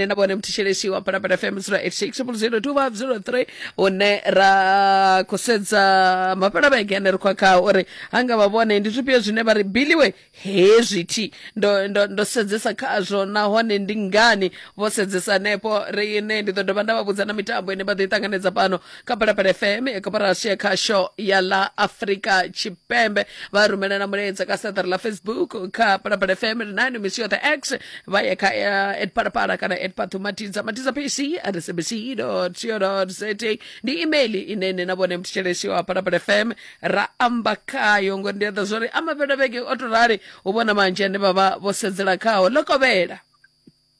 na vhone mthetshelesi wa phalaphala fm 0860025003 hune ra khou sedza mafhela vhege ane ri khou khao uri ha nga vha vhone ndi zwifhio zwine vha ri biliwe hezwi thi ndo, ndo, ndo sedzesa khazwo nahone ndi ngani vho sedzesa hanefho riine ndi ḓo dovha nda vha vhudza na mitambo ine vha ḓo i ṱanganedza fhano kha phalaphala fm ya koporasi ya khasho ya ḽa afrika tshipembe vha rumelana mulaedza ka saṱari ḽa facebook kha phalaphala fm ri nayo misi yoṱhe x vha ye kha eh, at phalaphala kana at pathu matiza matiza pc at sabc co za ndi email ine ine na vhone mthetshelesi wa phalaphala fm ra amba khayo ngori ndi a ḓa zwori a mavhela vhege o to rali u vhona manzhi ane vha vha vho sedzela khaho ḽo kovhela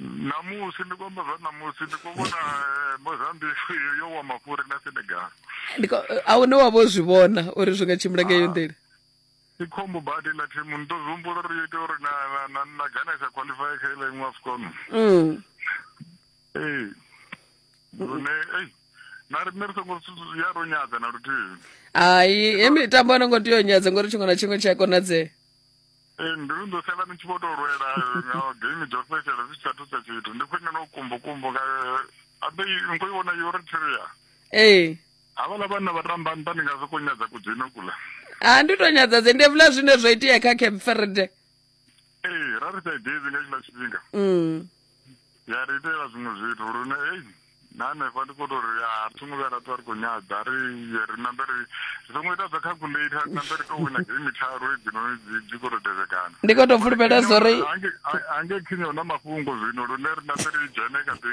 Ṋamusi ndi khou amba zwa ṋamusi ndi khou vhona eh, Mozambique yo yo wa mafhuri na Senegal. Ndi ko- a hune wa vho zwi vhona uri zwi nga tshimbila nga iyo nḓila Ndi khombo badi ḽa thimu ni ḓo zwi humbula uri yo ita uri na na na na Ghana sa qualify kha ile iṅwe AFCON. Mm. Ee. Lune ei na riṋe ri songo su- ya ro nyadza na luthihi. hai he mitambo a no ngo tea u nyadza ngori tshiṅwe na tshiṅwe tshi a konadzea Ee, mbilu ndo sala ni tshi vho tou lwela nga game dzo fhedzisela zwi tshi sa thusa tshithu ndi khwine no kumbukumbu nga abe ni khou i vhona eritrea ee havhala vhanna vha tamba nṱha ndi nga sokou nyadza kudzino kula a ndi tou nyadza dze ndi evula zwine zwa itea kha cape verde ee ra ri sa idezi nga tshila tshifhinga mm. ya ri itela zwiṅwe zwithu lune ei na hanefha ndi khou tou ri a ri songo vhuya ra ṱwa ri khou nyadza ri ye ri nambe ri ri songo ita dza calculator ri nambe ri tou wina game tharu hedzinoni dzi khou tou tevhekana ndi khou tou fulufhela zwo ri ange khinya hu na mafhungo zwino lune ri nambe ri dzhene kha ḓi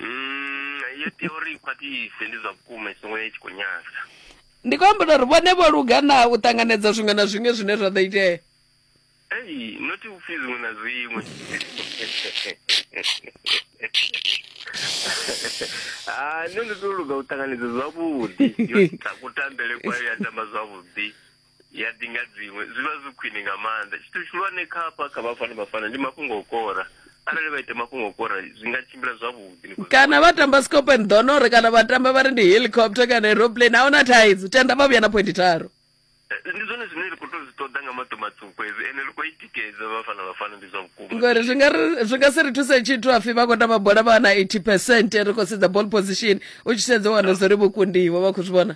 Mm, iyo theory i khwaṱhise ndi zwa vhukuma i songo ya i tshi khou nyasa ndi khou amba uri vhone vho luga na u ṱanganedza zwiṅwe na zwiṅwe zwine zwa ḓo itea ei noti upfi zwiṅwe na zwiṅwe ha nṋe ndi tou luga u ṱanganedza zwavhuḓi yo ita kutambele kwayo ya tamba zwavhuḓi ya ḓi nga dziṅwe zwi vha zwi khwine nga maanḓa tshithu tshihulwane kha hafha kha vhafana vhafana ndi mafhungo o kora arali vha ita mafhungo o kora zwi nga tshimbila zwavhuḓi kana vha tamba scop and donore kana vha tamba vha ri ndi helicopter kana aeroplane a huna thaidzo tenda vha vhuya na phointi tharu eh, ndi zwone zwine ri khou tou zwi ṱoḓa nga maṱo matswuku edzi ende ri khou i tikedza vhafana vhafana ndi zwa vhukuma ngori zwi nga si ri thuse tshithu afi vha khou tamba bola vha na eighty percent ri khou sedza ball position u tshi sedza wana zwo ri vho kundiwa vha khou zwi vhona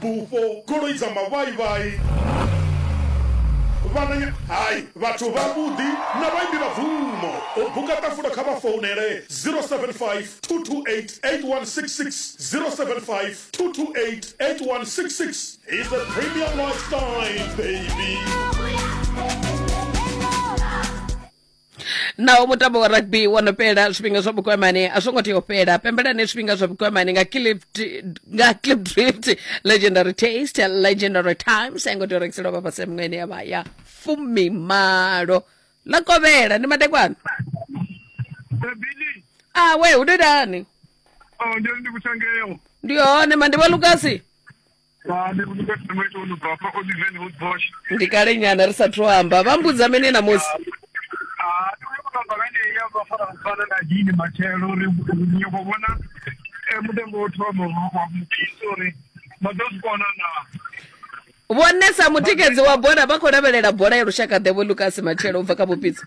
Bufho, goloi dza mavhaivhai, vhananya, hai, vhathu vhavhuḓi na vhaimbi vha bvumo. U buka ṱafula kha vha founele 0752288166, 0752288166. He's a premium lifestyle baby. naho mutambo wa rugby wo no fhela zwifhinga zwa vhukwamani a zwo ngo tea u fhela pembelani zwifhinga zwa vhukwamani nga clip nga clip drift legendary taste legendary times a ngo tea u rengiselwa vha fhasi miṅweni ya vha ya fumimalo ḽa kovhela ndi madekwana Bebili, a we hu dodani oh, ndio ndikuchangeyo. ndi hone mandi wa lukasi ndi kale nyana ri sathu amba vha mbudza mene namusi dini matshelo uri nyoko vhona eh, mutengo wo thoma wa mupisi uri vha ḓo zwi kona na vhonesa mutikedzi wa bola vha khou lavhelela bola ya lushaka ḓevho lucas matshelo u bva kha vhupitsa